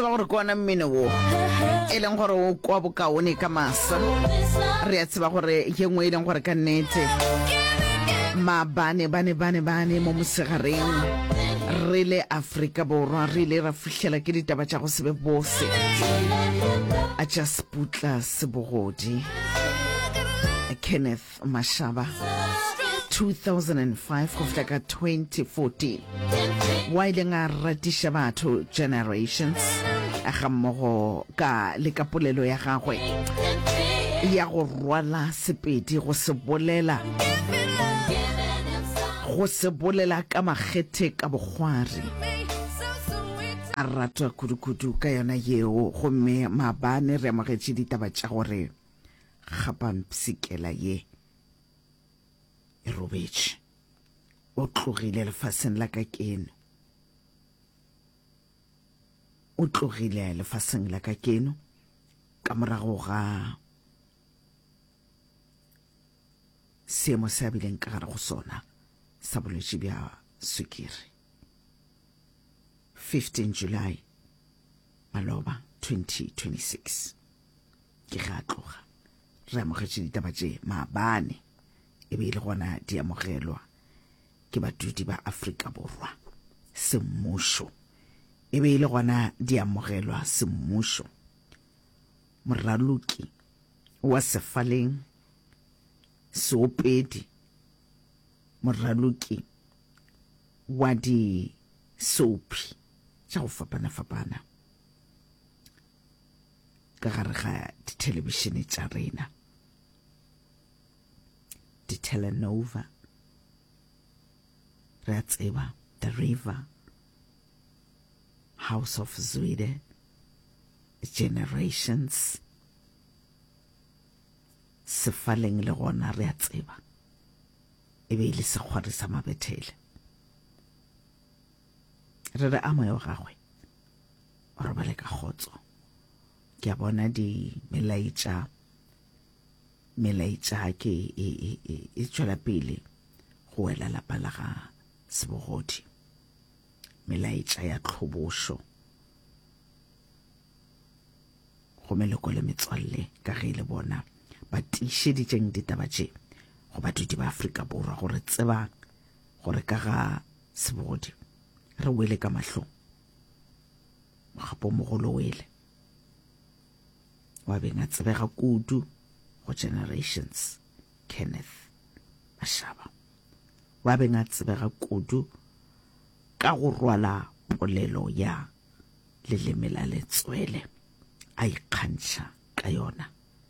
tseba gore ke ona mmine wo e leng gore o kwa bokaone ka masa re a tseba gore ye nngwe e leng gore ka nnete maabane bane bane bane mo mosegareng re le aforika borwa re ile ra fitlhela ke ditaba tša go sebe bose a tša seputla sebogodi kenneth Mashaba 2005 go fihla ka 2014 wa ileng a ratiša batho generations ga mmogo ka le ka polelo ya gagwe ya go rwala sepedi go se bolela go se bolela ka makgethe ka bokgwari a ratwa kudukudu ka yona yeo gomme maabane re amogetše ditaba tša gore ga pampsikela ye e robetše o tlogile lefaseng la ka keno o tlogile lefaseng la ka keno ka morago ga seemo se a bileng ka gare go sona sa bolwetši bja swikiri 15 july maloba 2026 ke ga tloga re amogetše ditaba tše maabane e be e le gona di amogelwa ke badudi ba afrika borwa semmušo e be e le gona di amogelwa semmušo moraloki wa sefaleng seopedi moraloki wa disophi tša go fapana-fapana ka gare ga dithelebišene tša rena ditelenova re a tseba the river house of zwide generations sefaleng le gona re a tseba e be e le sekgwari sa mabethele re re a moya wa gagwe o robale ka kgotso ke a bona di melaetša melaetša ke e, e, e, e tšwela pele go wela lapa la ga sebogodi melaetša ya tlhobošo gomme leko le metswalle ka ge e le bona ba tiišeditseng ditaba tše go badudi ba afrika borwa gore tsebang gore ka ga Sebogodi, re wele ka mahlong. Mogapo mogolo wele. Wa beng a tsebega kudu go generations. Kenneth Mashaba. Wa beng a tsebega kudu ka go rwala polelo ya leleme la letswele a ikgantšha ka yona.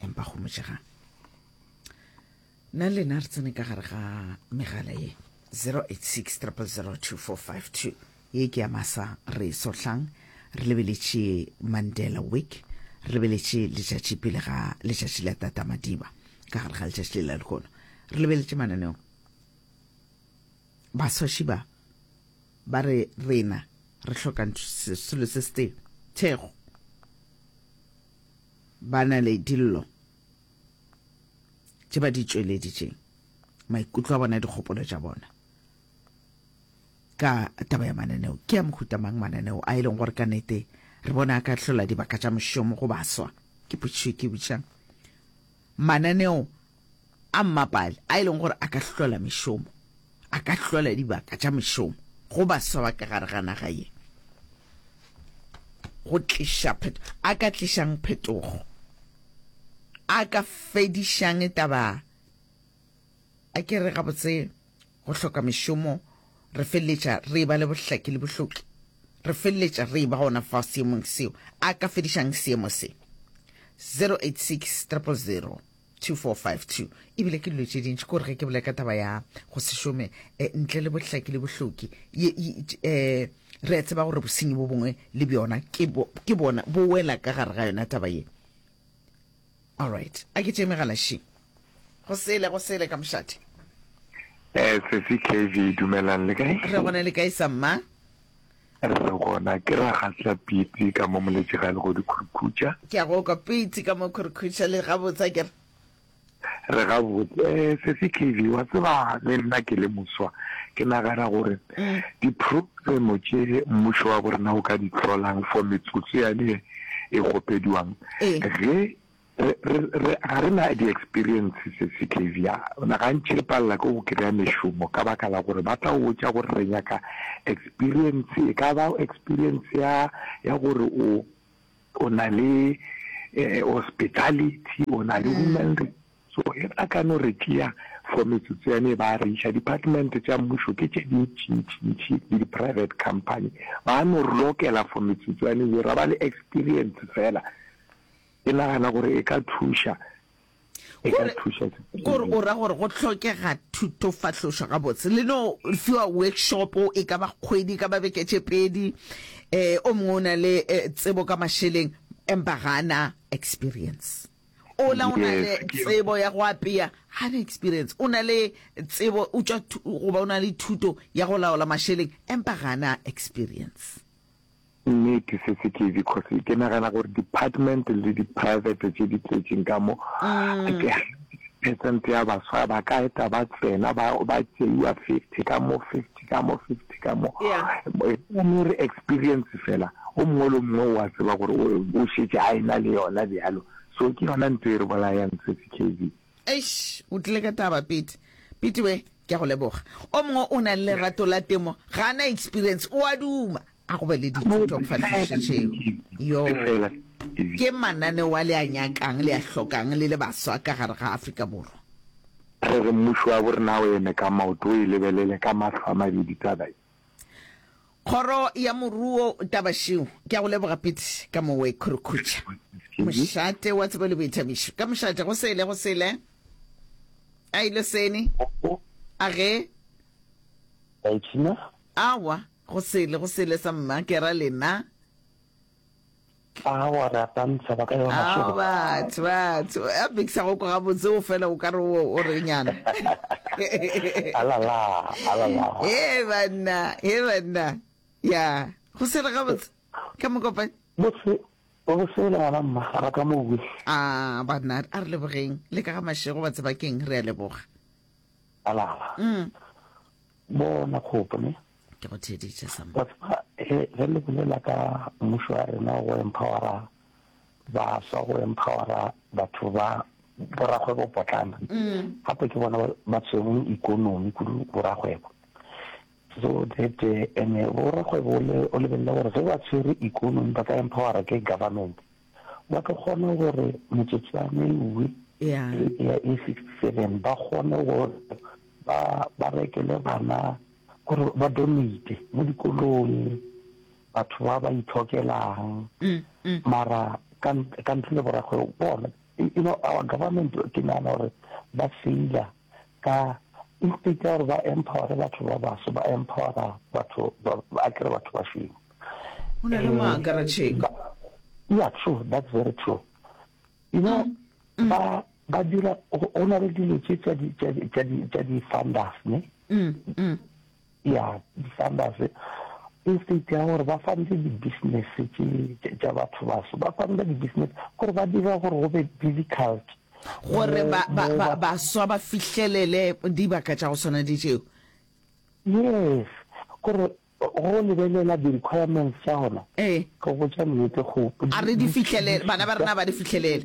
empa go motšegang nna lena re tsene ka gare ga megala ye 086 002452 ye ke ya masa re sohlang re lebeletše mandela week re lebeletše letšatši pele ga letšatši la tata madiba ka gare ga letšatši le la lehono re lebeletše mananeo baswaši ba ba re rena re hloka selo se se thego Ba na le dillo tše ba di tšweleditšeng, maikutlo a bona, dikgopolo tša bona ka taba ya mananeo. Ke a mohuta mang mananeo a e leng gore ka nete re bona a ka hlola dibaka tša mošomo go baswa? Ke potšišo ke butšang. Mananeo a mmapaale a e leng gore a ka hlola mešomo, a ka hlola dibaka tša mešomo go baswa ba ka gare ga naga ye, go tliša pheto, a ka tlišang phetogo, a ka fedišang taba a ke re gabotse go hloka mešomo re feleletša re e ba le bohlaki le bohloki re feleletša re e ba gona fa seemong seo a ka fedišang seemo se 086 000 2452 e bile ke dilo tše dintši kore ge ke bolela ka taba ya go se šome eh, ntle le bohlaki le bohloki eh, re a tseba gore bosenyi bo bongwe le bjona ke bona bo wela ka gare ga yona taba ye allright a ke tše megalaši go sele go sele ka mošate eh, sesi kv dumelang le kae re gona le kae samma Re re gona, ke ra gasla pitsi ka mo moletše ga le go di khurkhutša. Ke a go kwa pitsi ka mo khurkhutša le gabotse, a ke re. Re gabotse, Sesi Kaylee, wa tseba le nna ke le moswa, ke nagana gore diprogremo tše mmušo wa bo rena o ka di hlolang for metsotso yane e kgopediwang, ge Re, re, re, ga re na di-experience se se Xavier. Na gantši re palela ke go kry-a mešomo ka baka la gore ba tla o botša gore re nyaka experience, e ka ba experience ya, ya gore o, o na le eh, hospitality, o na le human re- so e ba ka no re tšea for metsotso yane ba re iša department tša mmušo ke tše dintšintšintši le di-private company ba no re lokela for metsotso yane yo ra ba le experience fela Ke nagana gore e ka thuša. E ka thuša. Gore o ra gore go tlhokega thuto fahlošo ga botse. Le no fiwa workshop e ka ba kgwedi ka ba beke tše pedi. Eh o mongwe o na le eh, tsebo ka mašeleng empa ga ana experience. O la o na le tsebo ya go apea ga na experience. O na le tsebo o tšwa goba o na le thuto ya go laola mašeleng empa ga ana experience. Nnete se se ke because ke nagana gore department le di-private tse di tletseng ka mo percent ya baswa ba ka eta ba tsena ba ba tseiwa fifty ka mo fifty ka mo fifty ka mo Yeah. mo re experience fela o mongwe le mongwe wa tseba gore o- o šetse a ena le yona bjalo so ke yona ntho e re bolayang se se kv Eish, o tlile ka taba Pete. Pete we, ke a go leboga. O mongwe o nang le rato la temo, ga a na experience, o a duma. A go be le dithuto kgfahlišo tšeo. Yo, ke mananeo a le a nyakang, le a hlokang, le le baswa ka gare ga Afrika Borwa. Re re mmušo wa bo rena o eme ka maoto, o e lebelele ka mahlo a mabedi taba ye. Kgoro ya Moruo Tabašeu, ke a go leboga Pete ka mowe Khurukhutša, mošate wa tsebo le boithabišo. Ka mošate, go sele, go sele. A ile seni? A ge? Awa, go sele, go sele sa mma, ke ra lena. Aa wa re akantsha ba ka yo mašego. Ao batho batho a bikisa go kwa gabotse o fela o ka re o re nyana. Alala alala. He banna he banna ya go se re gabotse ka mokopane. Botse o go sele ngwana mma ga ka mo we. A banna a re lebogeng le ka ga mašego ba tsebakeng re a leboga. Alala. Mm. Bona kgopo ne. Ke go theeditše sa. Wa tseba ge re le bolela ka mmušo wa rena go empowera baswa go empowera batho ba borakgwebo potlana mm. gape ke bona ba tshwereng ikonomi kudu borakgwebo so that eh, ene borakgwebo o lebelele gore ge ba tshwere ikonomi ba ka empowera ke government ba tlo kgona gore metsotswana e uwe ya e sixty-seven ba kgone gore ba ba rekele bana gore ba donate mo dikolong batho ba ba ithokelang mm, mm. mara ka ntle le borakgwebo bona you know our government ke nagana gore ba faila Ka instead ya gore ba empowere batho ba baso, ba empowera batho ba akere batho ba šweu. Go na le mo a akaretšheng. Yeah, true, that's very true. You know, mm. ba ba dira go na le dilo tse tsa di tsa di tsa di funders, ne? Mm. mm. ya di-funders e state ya gore ba fande di-business tša batho baso ba fande di-business gore ba dira gore go be difficult gore baswa ba fihlelele dibaka tša go swana di tšeo yes gore go lebelela di-requirements tša gona ee. go botsa nnete go a re di fihlelele bana ba rena ba di fihlelele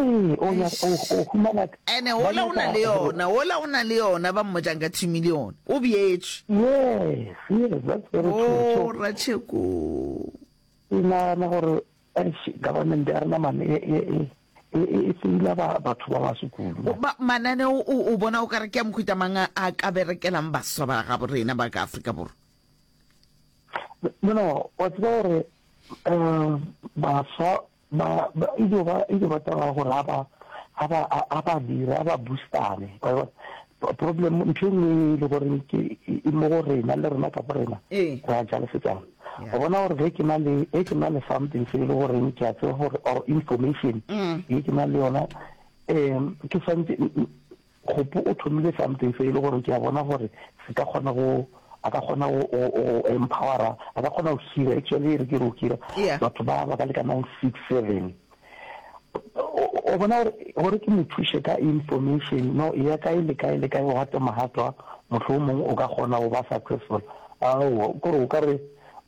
ene ola o na le yona ola o na le yona ba mmojang ka thimi le yona o bjetšweratšheko e nagana gore government ya rena mane e seila batho ba ba sekulu manane o bona o ka re ke ya mokhuta mang a ka berekelang baswa ba gabo rena ba ka afrika borwa no no wa tseba gore um baswa Ba, ba, e tlo ba, e tlo ba taba ya gore a ba, a ba, a, a ba dire, a ba boostane. Wa bona? P- Problem, ntho e nngwe e le gore ke, e e mo go rena, le rena ka bo rena, Ee. ra jalefetsana. Yeah. Wa bona gore ge ke na le, ge ke na le something se e le goreng ke a tseba gore, or information, Mm. ye ke na le yona, um ke swantse, Kgopo o thomile something se e le gore ke a bona gore se ka kgona go a ka kgona go empowera a ka kgona go hira actually re ke re o hira batho ba ba ka lekanang six seven o bona gore ke mo thushe ka information no e ya kae le kae le kae o gate mogatwa motlho o mongwe o ka kgona go ba successful ao kore o ka re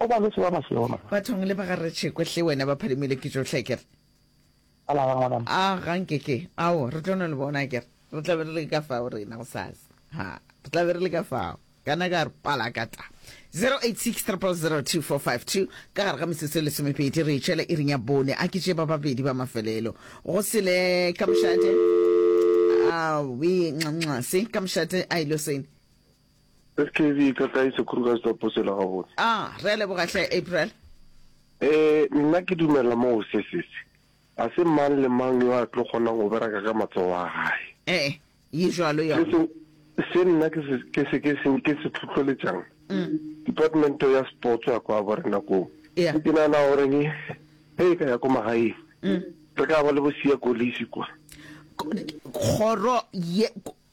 O ba lwetše ba ba šoro. Bathong le ba ga Retšhekwe hle wena ba phalimile ke tšohle akere. A la ga ngwanam. A ga nke ke. Ao re tlo no le bona akere. Re tla be re le ka fao rena go sasa. Ha re tla be re le ka fao. Kana ka re pala ka ta. 0863002452 ka gare ga metsotso e lesomepedi re itšhela iring ya bone a ke tše ba babedi ba mafelelo go sele ka mošate a we nxa nxa se ka mošate a ile sene Skv, Ka kae sekuru ka setoposo la gabotse? A, Re a leboga hle, April. E, Nna ke dumela moo, se, se, se. Ga se mang le mang yo a tlo kgonang go bereka ka matsogo a gae. E, Ye jwalo Se, yona. se, se nna ke se, ke se, ke se, ke se tlhotlholetšang, departmento ya sports ya kwa borena koo, Yeah. ke nagana gore ge e ka ya ko magaeng, re ka ba le bo Siya Kolisi kwa. K- Kgoro ye, k-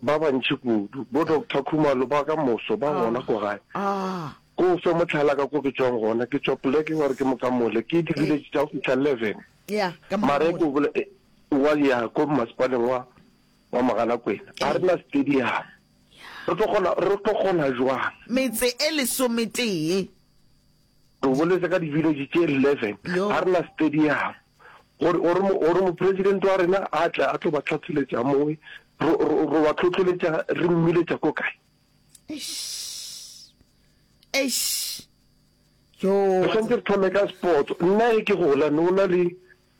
Ba bantši kudu, bo Doctor Khumalo ba ka moso, ba gona ko gae. Ko o fe mohlala ka ko ke tšwang gona. Ke tšwa poleke wa re ke Mokamole. Ke diviletše tša go fihla eleven. Mare ke o wa ya ko mmasepaleng wa wa Mogalakwena. Ga re na stadium. Re tlo kgona, re tlo kgona jwang? Metse e lesometee. Re o boletse ka di-village tše eleven, ga re na stadium gore mopresidente wa rena a tle a tlo ba tlhatsholetša moe, ro ba tlhotlholetša re mmiletša ko kae? Eish. Yo. Re tshwanetse re thome ka sports. Nna e ke gola ne o na le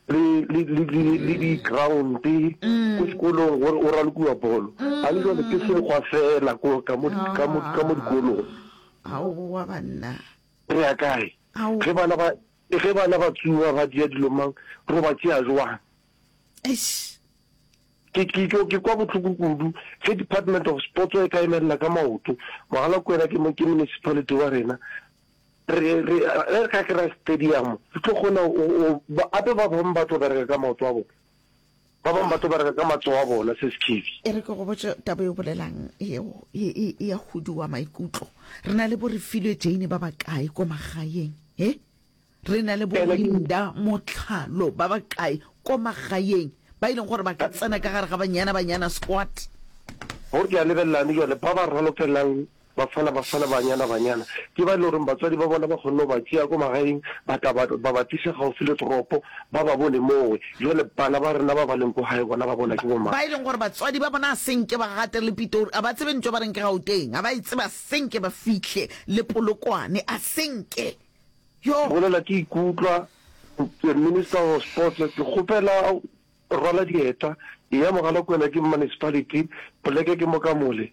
le le le le le di ground ko sekolong gore o ralokiwa bolo a le jwale ke sekgwa fela ko ka mo ka mo ka mo dikolong aowa banna re ya kae Ao. ge bana ba ge bana ba tsuwa ba dia dilo mang ro ba tšea jwang eish ke ke ke ke kwa botlhoko kudu ge department of sports e ka emelela ka maoto mogala ko wena ke mo ke municipality wa rena Re, re, ge re ka kry-a stadium, re tlo kgona go, go, gape ba bangwe ba tlo bereka ka maoto a bona, ba bangwe ba tlo bereka ka matsogo a bona, se sekhebi. E re ke go botše taba e o bolelang yeo e, e, e ya huduwa maikutlo. Re na le bo re filwe Jane ba bakae ko magaeng, he? Re na le bo Ene ke- Linda Motlhalo ba bakae ko magaeng ba e leng gore ba ka tsena ka gare ga Banyana Banyana Squad. Gore ke a lebelelane jale, ba ba ralofelelang Bafala, bafala, banyana, banyana, ke ba e le gore batswadi ba bona ba kgonne go ba tšea ko magaeng ba tla ba, ba ba tliša gaufi le toropo, ba ba bone mowe. Bjale, bana ba rena ba ba leng ko gae, bona ba bona ke bomang? Ba e leng gore batswadi ba bona a se nke ba gate le Pitori, ga ba tsebe ntwa ba reng ke Gauteng, ga ba e tsebe, a se nke ba fihle le Polokwane, a se nke. Yo! Bolela, ke ikutlwa the Minister of Sports, ke kgopela rwala dieta, eya Mogalakwena, ke Municipality, poleke ke mo ka mole,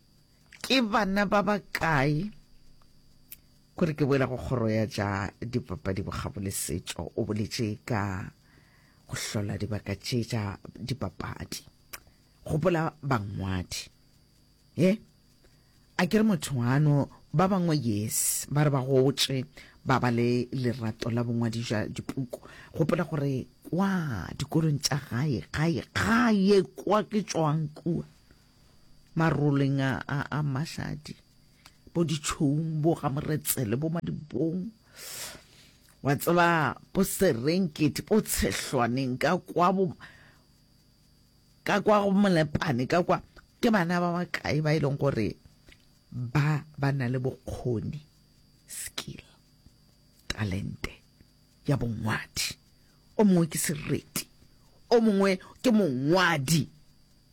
Ke bana ba ba kae? Kore ke boela go kgoro ya ja dipapadi bokgabo le setšo o boletše ka go hlola dibaka tše tša dipapadi gopola bangwadi e a ke re motho ano ba bangwe yes ba re ba gotše ba ba le lerato la bongwadi ja dipuku gopola gore kwa dikolong tša gae gae gae kwa ke tswang kua maroleng a, a, a mašadi bo ditšhoung bo ga moretsele bo madibong wa tseba bo serenkete bo tshehlwaneng ka kwa bo ka kwa go molepane ka kwa ke bana ba bakae ba e leng gore ba ba na le bokgoni skill talente ya bongwadi o mongwe ke sereti o mongwe ke mongwadi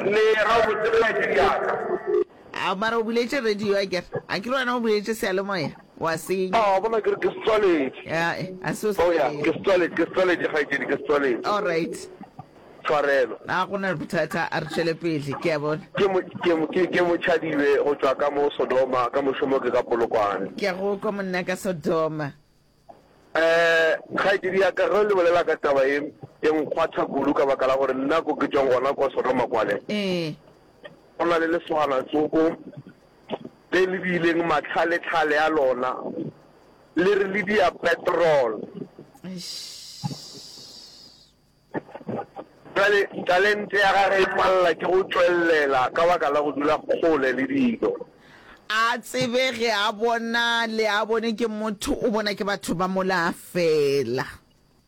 Mme ga o butse radio ya ka. Ao mara o buletše radio akere? Akere wena o buletše seyalemoya? Wa senya. Ao bona ke re ke se tswaletše. Ae, a se o se tswaletše. Ke se tswaletše, ke se tswaletše kgaetšedi, ke se tswaletše. Alright. Tshwarelo. A go na le bothata, a re tšwele pele, ke a bona. Ke mo, ke mo, ke, ke mo tšhadibe go tšwa ka mo Sodoma, ka mošomo ke ka Polokwane. Ke a go kwa monna ka Sodoma. Um, kgaetšedi ya ka, ge o le bolela ka taba ye, e nkgwatha kudu ka baka la gore nna ko ke tšwang gona kwa Sodoma kwale, Ee, go na le lesoganatsoko le le bileng matlhaletlhale a lona le re le dia petrol. eish. Bjale, talente ya gagwe e palela ke go tšwelela ka baka la go dula kgole le dilo. A tsebe ge a bona, le a bone, ke motho, o bona ke batho ba mola feela.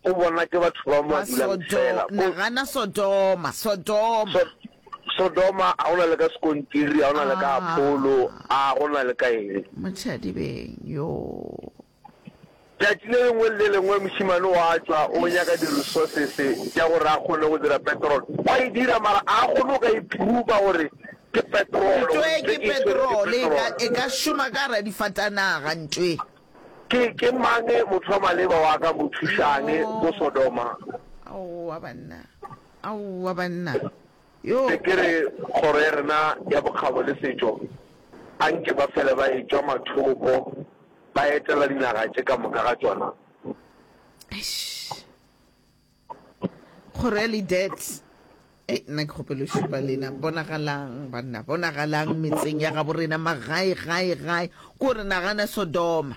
O bona ke batho ba mo a dulang feela. Ko. Nagana Sodoma, Sodoma. So, Sodoma, a gona le ka sekontiri, a gona le ka Apollo, a gona le ka eng. Motšhadibeng, yoo. Tšatši le lengwe le le lengwe mošemane o a tšwa o nyaka di-resources tša gore a kgone go dira petrol. O a e dira mara a kgone go ka i-prover gore ke petrol. Ntšwe ke petrol, e ka, e ka šoma ka gare ga difatanaga ntšwe. Ke, ke mang motho wa maleba wa ka mo thušang ko Sodoma? Aowa banna, aowa banna. Be ke re Kgoro ya rena ya Bokgabo le Setšo a nke ba fele ba e tšwa mathoko ba etela dinaga tše ka moka ga tšona. Kgoro ya Lidet. Ei, nna ke kgopelo šupa lena. Bonagalang, banna, bonagalang metseng ya gabo rena, magae, gae, gae. Ko re nagana Sodoma.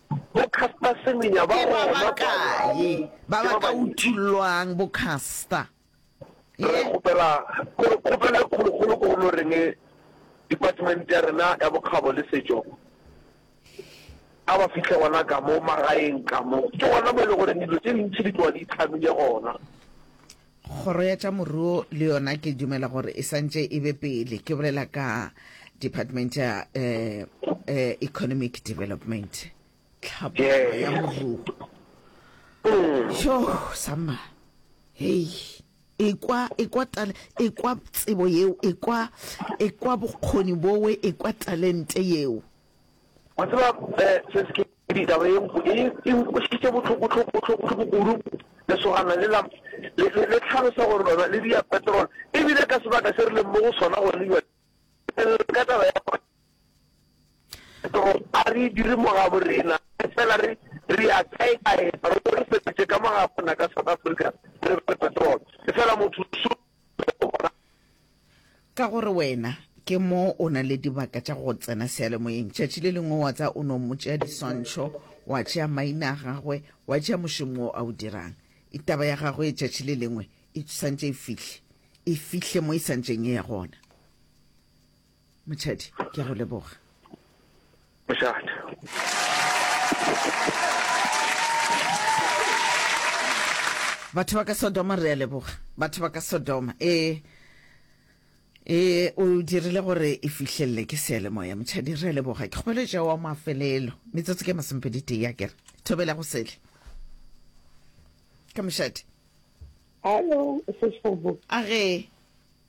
Bo Caster Semenya ba gona kwa London. Ke ba bakae ba ba ka uthullwang, Bo Caster? Re kgopela kgopelo e kgolokgolo ko go Loreng Department ya rena ya Bokgabo le Setšo, a ba fihle gona ka mo magaeng ka mo. Ke gona mo e le goreng dilo tše dintši di tloga di itlhamile gona. Kgoro ya tša Moruo le yona ke dumela gore e santše e be pele, ke bolela ka Department ya eh, eh, Economic Development, tlhabollo ya moruo. Yo, sama, hei, ekwa, ekwa, tale, ekwa tsebo yeo, ekwa, ekwa bokgoni bowe, ekwa talente yeo. Wa tseba se se ke taba e nku e e nkwešitše bohloko hloko bohloko hloko kudu lesogana le la le le tlhalosa gore lona le dia petrol e bile ka sebaka se re leng mo go sona go ne ka taba ya petrol a re dire mo ga bo rena fela re re ya kae kae re go re fetše ka mo ga bona ka South Africa re petrol fela motho Ka gore wena ke mo o na le dibaka tša go tsena seyalemoyeng, tšatši le lengwe wa tsa o no mo tšea diswantšho, wa tšea maina a gagwe, wa tšea mošomo wo a o dirang. Taba ya gagwe e tšatši le lengwe e swantše e fihle, e fihle mo e swantšeng e ya gona. Motšhadi, ke a go leboga. Batho ba ka Sodoma re a leboga. Batho ba ka Sodoma. Eh e o dirile gore e fihlelele ke seelemoya motšhadi re leboga ke kgopelo ja wa mafelelo metsotso ke masomepedi tee ya kere thobela go sele ka mošadi hallo a ge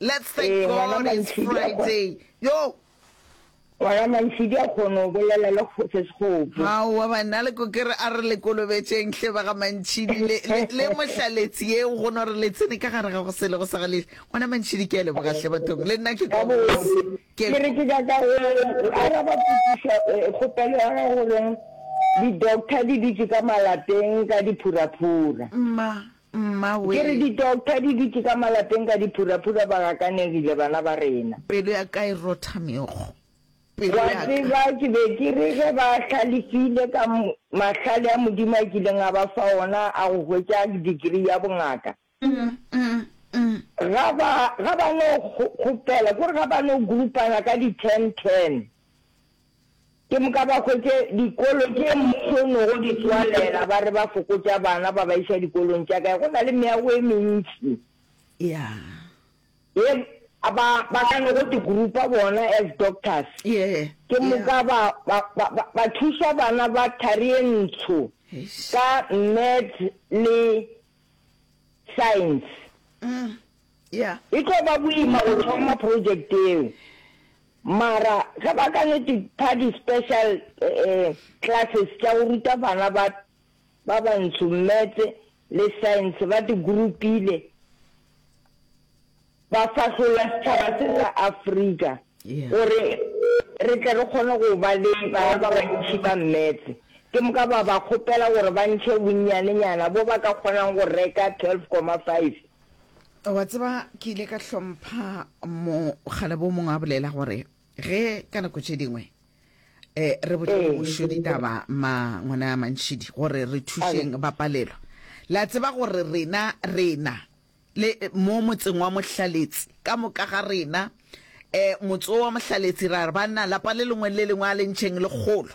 Let's thank Ee, ngwana God it's Mansidi a kgona- Friday. Yo, ngwana mansidi a kgone go bolela le go- se sekgopo hao wa bana le ko kere a re le kolobetšeng hle ba ga mantšhidi le, le, le mohlaletsi ye o gona gore le tsene ka gare ga go sele go sa gale ngwana mantšhidi ke a leboga hle bathong le nna ke ka botse ke ke re ke ka ka o araba potsiša eh, kgopelo ya ga goreng di-doctor di dutše ka malapeng ka diphuraphura mma Mmawee! Ke re di-doctor di dutše ka malapeng ka diphuraphura ba gakanegile bana ba rena. Pelo ya ka e rotha meokgo. Pelo Wa ya ka. tseba ke be ke re ge ba hlalefile ka m, mahlale a Modimo a kileng a ba fa ona a go hwetša degree ya bongaka, ga ba, ga ba no kgo, kgopela, ke gore ga ba no groupana ka di-ten-ten. Ke moka ba hwetše dikolo tše mmušo o nogo di tswalela, ba re ba fokotša bana ba ba iša dikolong tša gae, go na le meago e mentši. Yeah. Ye a ba, ba ka nogo di grupa bona as doctors. Yeah. Ke moka ba, ba, ba, ba, ba thuša bana ba thari ye ntsho Eish. ka maths le science. Ah. ya. E tlo ba boima go thoma project yeo, mara ge ba ka no di pha di special classes tša go ruta bana ba ba bantsho maths le science ba di groupile ba fahlolla setšhaba se sa Afrika gore re tle re kgone go ba le bana ba bantši ba maths. Ke moka ba ba kgopela gore ba ntšhe bonnyanenyana bo ba ka kgonang go reka 12.5. wa tseba ke ile ka hlompha mokgalabo o mongwe a bolela gore ge ka nako tše dingwe um re botse ee. mošo ditaba ma ngwana ya mantšhidi gore re thušeng ba palelwa la tseba gore rena rena le mo motseng wa mohlaletsi ka moka ga rena um motse wa mohlaletsi ra re banna lapa le lengwe le lengwe a lentšheng lekgolo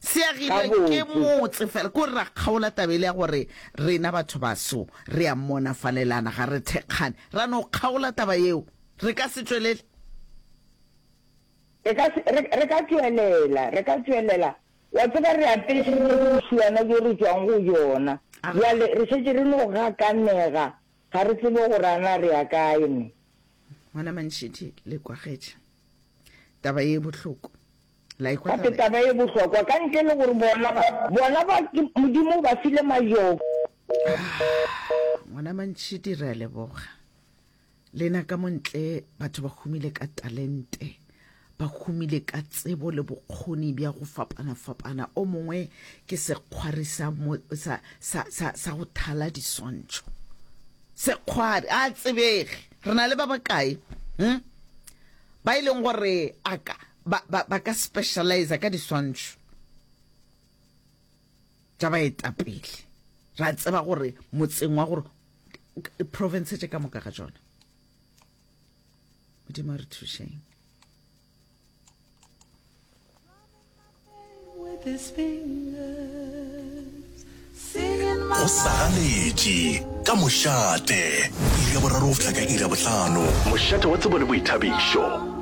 Se agilwe ke motse fela, ke gore ra kgaola taba ele ya gore rena batho baso re a monafalelana, ga re thekgane. Ra no kgaola taba yeo. Re ka se tšwelele? Re ka se, re, re ka tšwelela, re ka tšwelela. Wa tseba, re apeše bjo bošuana bjo re tšwang go bjona. Bjale re šetše re no gakanega, ga re tsebe gore a na re ya kae. Mme. Ngwana Mantšhidi, le kwagetše taba ye bohloko. La ekwa taba ye? Taba ye bohlokwa ka ntle le gore bona ba bona ba Modimo ba file majoko. Ah, ngwana mantšhidi re a leboga lena ka montle batho ba humile ka talente ba humile ka tsebo le bokgoni bja go fapana-fapana o mongwe ke sekgwari sa, sa, sa, sa, sa go thala diswantšho sekgwari a tsebege re na le ba bakae hm? ba e leng gore a ka ba, ba, ba ka specializa ka diswantšho tša baetapele ra tseba gore motseng wa gore province tše ka moka ga tsona modimo a re thušeng go sagaletše ka mošate iri ya boraro go fihla ka iri ya botlhano mošate wa tsebo le boithabišo